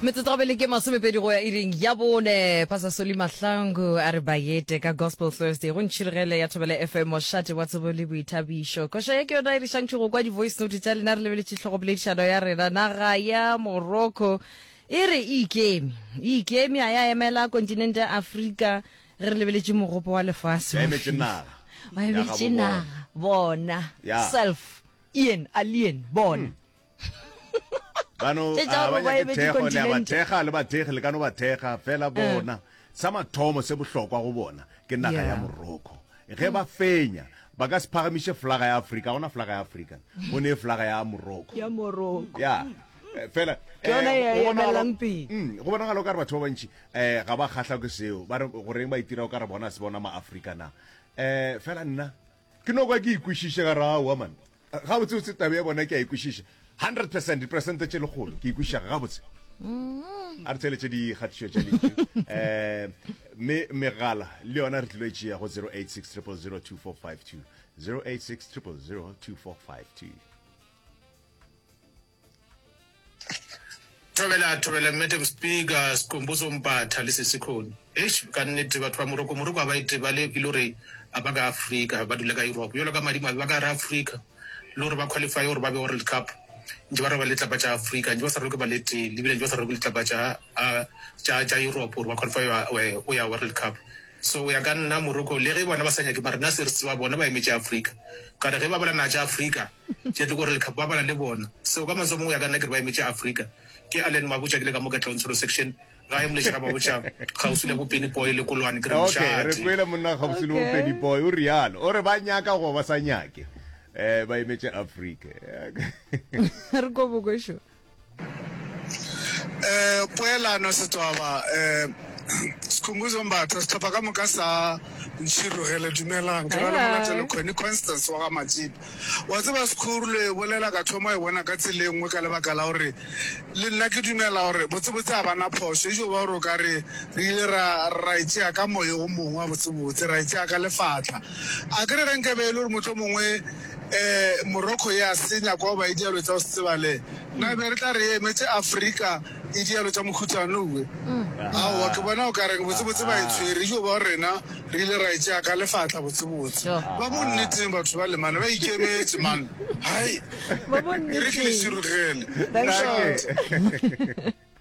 metsotsogabele ke masomepedi go ya iring ya bone pasa soli mahlangu a re bayete ka gospel thursday go ntšhirigele ya thobela fm mošate wa tsebo le boithabišo koša ye ke yona e re šantšho go kwa di-voice note tša lena re lebeletše tlhogopoledišano ya rena naga ya morocco e re e ikeme e ikeme a ya emela kontinente ya afrika ge re lebeletše mogopo wa lefase ba emetše naga bona self ian alien bona hmm. bano Tše tša a ba gore ba nyake eme thekgo le a ba dikontinente. thekga le bathekgi le ka no ba thekga fela bona sa mathomo se bohlokwa go bona ke naga ya Yeah. morocco ge ba fenya ba ka se phagamiše flaga ya afrika gona flaga ya afrika go ne flaga ya morocco ya moroko ya eh, fela Ke yona eh, e go bonagala- emelelang pele. Mm, go bonagala o ka re batho ba bantši um ga ba kgahlwa ke seo ba re goreng ba itira o ka re bona se bona ma-afrika na um fela nna Ke no kwa ke e kwešiše ka re aowa man, gabotsebotse taba ya bona ke a e kwešiša hundred percent, diperesente tše lekgolo ke e kwešiša gabotse. Mm. a re theletše dikgatišo tša lentšu um eh, mme megala le yona re tlilo e tšea go 086 086 086 Thobela, thobela, Madam Speaker, Sikhumbuzo Mpatha, le Sesikhoni. Eish, ka nnete, batho ba Moroko, Moroko ha ba itebale, e le hore ha ba ka Afrika, ba dula ka Europe. Bjalo ka madimabe, ba ka hara Afrika, e le hore ba qualify-e hore ba be World Cup, ntše ba rweba le litlapa tša Afrika, ntše ba sa rwebe ba le tee, ebile ntše ba sa rwebe litlapa tša, a, tša, tša Europe hore ba qualify-e go ya, e, go ya World Cup. So, go ya ka nna, Moroko, le ge bona ba sa nyake, mara rena se re tseba, bona ba emetše Afrika. Ka re ge ba bala naha tša Afrika, Tše tlo gore lekhapu ba bala le bona seo ka mantswe a mongwe ya ka nna ke re ba emetše Afrika ke Allen Mabotja ke le ka mo ka Tlontsholo section ga e moleše ga Mabotja kgauswi le bo Penny Boy le Kolwane ke re okay re mošate kwele monna kgauswi le bo Okay. Penny Boy o realo o re ba nyaka goba ba sa nyake eh ba emetše Afrika Re ko bokošo. um poelano setswaba um sikhumbuzo mbatha sehlopha ka moka sa ntšhirogele dumelang ke ra le molatelo khoni constance wa ga matsipa wa tseba sekhuru le bolela ka thoma e bona ka tsela e nngwe ka lebaka la gore le nna ke dumela gore botsebotse a bana phoso e jo ba gore o ka re re ile ra ra e tsea ka moye o mongwe wa botsebotse ra e tsea ka lefatla a ke re ge nkabe e le gore motlho mongwe Morocco ya senya kwa ba e dialo tša go se tsebale na be re tla re emetše Africa e dialo tša mokhutsano we aowa ke bona o ka reng botse botse ba e tshwere yo ba rena re ile ra e tšea ka lefatla botse botse ba bo nneteng batho ba lemane ba ikemetše man hai e re ke le širugele.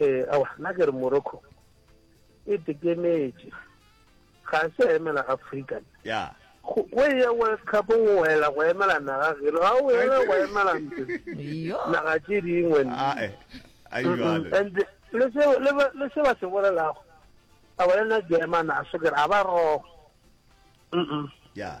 Ee, aowa, nna ke re Morocco e tekemetše, ga a se emela Afrika. Ya. Go go e ya World Cup o wela go emela naga geno, ga o ela go emela ntse Yo. naga tše dingwe. nna. Ah, eh. A e bjalo. And le se le ba- le se ba se bolelago a ba le na German a so ke re a ba wrong. Mm-mm. Ya.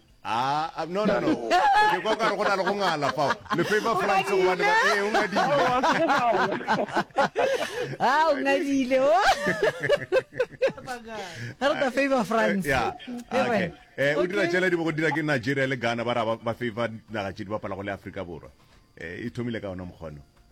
Ah, no, no, no. Ke kwa ka re go na le go ngala fao. Le favor France go bane ba eh o ngadile. Ah, o ngadile. o. Ga re ta favor France. Yeah. Ke Okay. re- Eh o dira Okay. tšela di bo go dira ke Nigeria le Ghana ba ra ba- ba favor naga tše di bapala go le Afrika Borwa. Eh e thomile ka ona mokgono.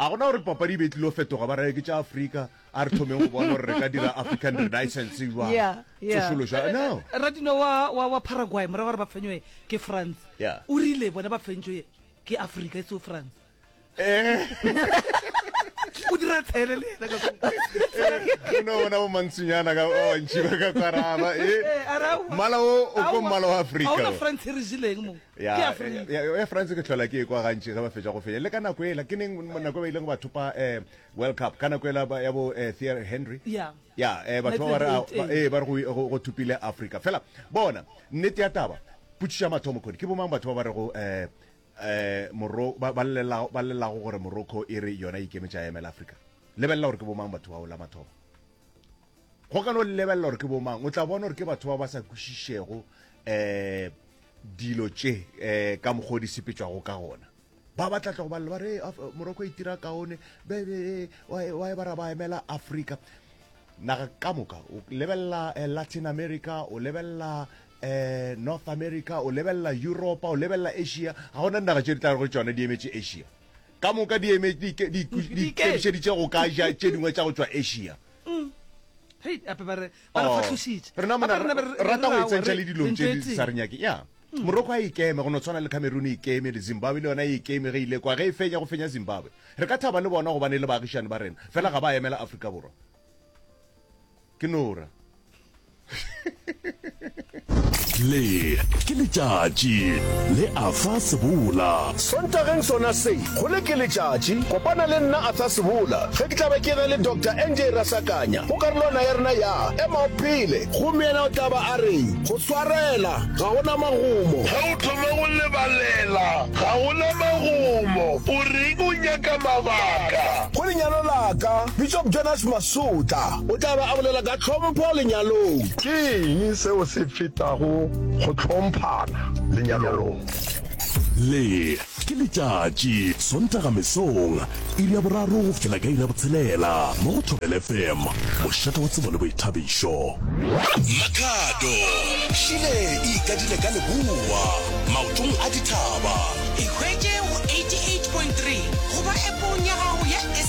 A go na gore papadi e be e tlilo fetoga ba raya ke tša Afrika, a re thomeng go bona gore re ka dira African Renaissance jwang, Yeah, yeah. tsošološo ya no. Radino wa, wa, wa Paraguay, morago ga gore ba fenyoe ke France, Yeah. o rile bona ba fentšoe ke Afrika, e seo France. O dira tshele le yena ka kwa. O no bona bo mantshinyana ka ba bantši ba ka kwaraba, Eh, a re aowa. eh, mmala o o ko Aowa. mmala wa Ga Afrika. ona o. France e re jeleng mo. ya Ke ya French. ya- ya- ya france ke tlhola ke e kwa gantši ge ba fetša go fenya le ka nako ela ke neng nako e ba ileng ba thopa um world cup ka nako ela ba- ya bo eh, Thierry henry Yeah. ya eh, batho ba ba re a- Michael ba- Jordan. ee, ba re go- go- go thopile africa fela bona nnete ya taba potšišo ya mathomo kgodi ke bomang batho ba ba re go um um moro ba ba llela- ba llelago gore morocco e re yona e ikemetse a emela africa lebelela gore ke bomang batho bao la mathomo go ka no lebelela gore ke bomang o tla bona gore ke batho ba ba sa kwešišego um eh, dilo tše um ka mokgwa o di sepetšwago ka gona ba ba tlatla go balela ba re moroko itira kaone wa e bara ba emela africa naga ka moka o lebelela eh, latin america o lebelela um north america o lebelela europa o lebelela asia ga gona dinaga tše di tla go tsone di emetše asia ka moka di eme di ke- di ku- di Dike. ikemišeditše go ka ja tše dingwe tša go tšwa asia hei ape ba re ba re Oh. kgahlošitše rena mona Ape rena be re- re- rata go re- itsentšha re- le dilong re tše di ntšwetseng. sa re nyake ya moroko a ikeme go no tshwana le cameroon e ikeme le zimbabwe le yona e ikeme ge ile kwa ge e fenya go fenya zimbabwe re ka thaba le bona gobane le baagišani ba rena fela ga ba emela afrika borwa ke nora le ke letšatši le afa sebola sontageng sona se go le ke letšatši kopana le nna afa sebola ge ke tlabe ke ge le dr nj rasakanya go karolwana ya rena ya ema o phele gomme yena o tlaba a reng go swarela ga gona magomo ge o thoma go lebalela ga gona magomo o reng o nyaka mabaka go lenyalo laka Bishop Jonas Masutla o tla be a bolela ka tlhompho lenyalong. Ke eng seo se fetago go hlomphana lenyalong? Le ke letšatši, Sontaga mesong, iri ya boraro go fihlela ka iri ya botshelela, mo go Thobela FM, mošate wa tsebo le boithabišo. Makhado, Šile e ikadile ka leboa, maotong a dithaba. E hwetše go 88.3 goba App-ong ya gago ya.